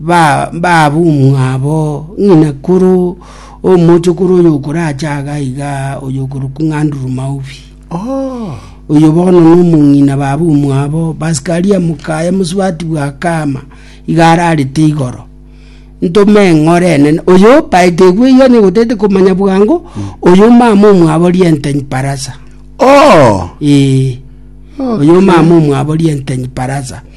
ba- baabumwabo, ng'ina koro omochokoro oyokorache aga iga oyokorokwa ng'a Andrew Mauvi. Oh. Oyo bono nomong'ina baabumwabo, Pascalia Mukaya mosubati bwa Kama, iga ararete igoro. Ntome eng'ore enene, oyo paete egwe iga nigo tete komanya bwango, oyo mama omwabo Rientany Parasa. Oh. Ee. Oyo mama omwabo Rientany Parasa.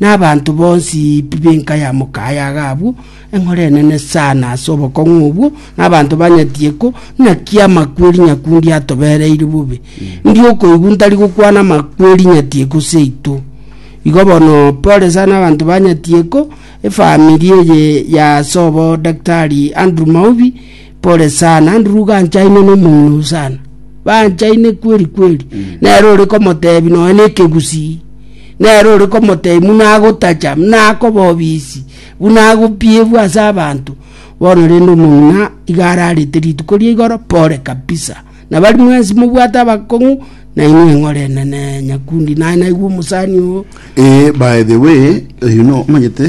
Nabaanto bonsi b'enka ya mokaye iga abwo, enkoro enene sana ase obokong'u obwo, na abanto banyetie ko naki amakweri nyakundi atobereire bobe. Ndi okoigwa ntari gokwana amakweri nyetie ko seito. Igo bono pole sana abanto banyetie ko efamiri eye ya sobo Daktari Andrew Maubi Pole sana, Andrew ganchaine nomong'ina oo sana. Banchaine kweri kweri. Nere ore komotebi nonya na ekegusii. Nere ore komotebi buna agotacha, buna akoba obisi, buna agopiebwa ase abanto. Bono rende omong'ina iga ararete rituko ria igoro, pole kabisa. Nabo aria mwensi mobwate abakong'u, na inwe eng'ore enene nyakundi. Naye naigwe omosani oo. Eeh by the way, oyio no omanyete.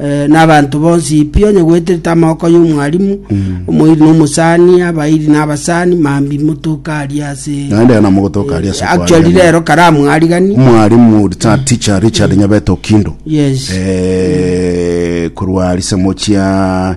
eh, na abanto bonsi pi onye gweterete amaboko y'omwalimu omoiri na omosani abairi na abasani mambi motoka ari ase naende yana mogotoka ari ase actually kwariana. rero karamu arigani mwarimu ta teacher richard nyabeto kindo yes Eh, korwa risamochia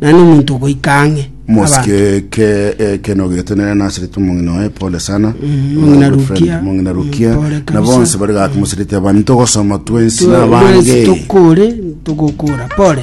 na nomonto ogoika ang'e. Mosike ke ekeno getenene naserete omong'ina oye pole sana Mong'ina My good friend, Rukia. mong'ina rukia Mm, pole na kabisa. bonse bari gaki moserete abani togosoma twensi nabange tokore togokora pole